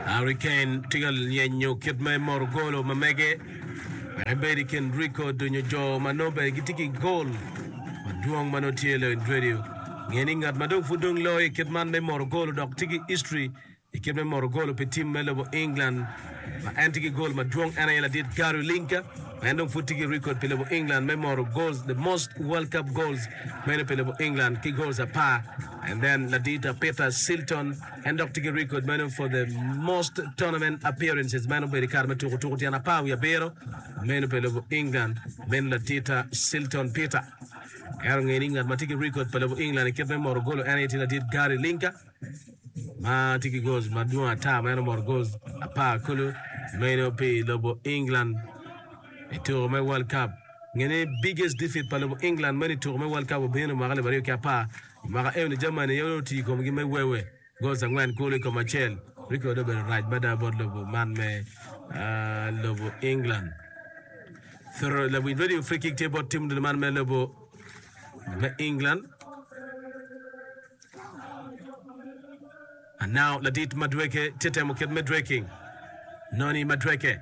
Harry Kane tye ka lyenyo kit ma emoro golo ma mege wek ebed i kin rikod nyo jo ma nongo bene gitye ki gol madwong ma nongo tye Leon Drediew. Nge ni ngat ma dong pud dong loyo i kit man me moro golo dok tye ki history i kit me moro golo pi tim me lobo England ma en tye ki gol madwong en aye ladit Gary Lineker ma en dong pud tye ki rikod pi lobo England me moro goals the most World Cup goals meno pi lobo England ki goals apar And then ladita Peter Shilton en dok tye ki record meno for the most tournament appearances meno obedo i kare ma tuko tuko tyen apar wiye abiro meno pa lobo England meno ladita Shilton Peter ento ongeyo ni ngat ma tye ki record pa lobo England i kit me moro golo en aye tye ladit Gary Linka ma tye ki goals madwong ata meno omoro goals apar kulu meno pi lobo England i tuko me World Cup Nge ni biggest defeat pa lobo England meno i tuko me World Cup obino mwaka alip aryo ki apar. I mwaka eno ni Germany aye onongo otiyo i komgi me wewe goals angwen kulu i kom acel. Ricky wade obedo rac mada bot lobo man me lobo England. Throw lawiny radio free kick tye bot tim dul man me lobo me England. And now ladit Madueke tye temo kit me dweking. Noni Madueke.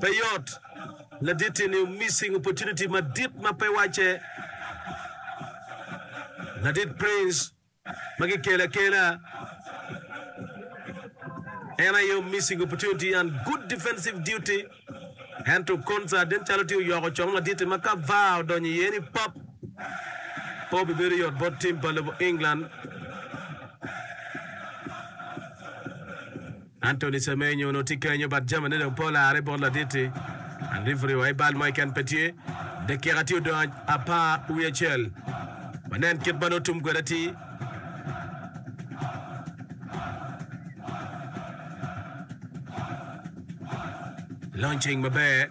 Pe yot, ladit eni missing opportunity madit ma pe wacce. Ladit Prince ma gikelo akela en aye missing opportunity and good defensive duty ento Konsa nen calo tye oyoko cong madit-ti ma ka var odonyo iye ni pap pe obibedo yot bot tim pa lobo England. Anthony Semenyo onongo tye kenyo but jamine dong pe olarre bot ladit-ti. An rifuri wa i bal mo keken pe tye. Dakika tye odong apar wiye acel. Wanen kit ma nongo tum kwede atir. Launching maber.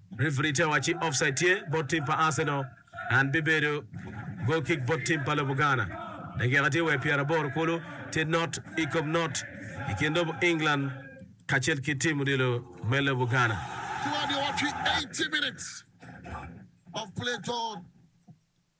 Referi tye wacci offside tye bot tim pa Arsenal and bibedo goal kick bot tim pa lobo Ghana. Dakika tye wa pyera aboro kulu tye not i kom not i kin lobo England kacel ki tim odilo me lobo Ghana. Two hundred and eighty minutes of play gone.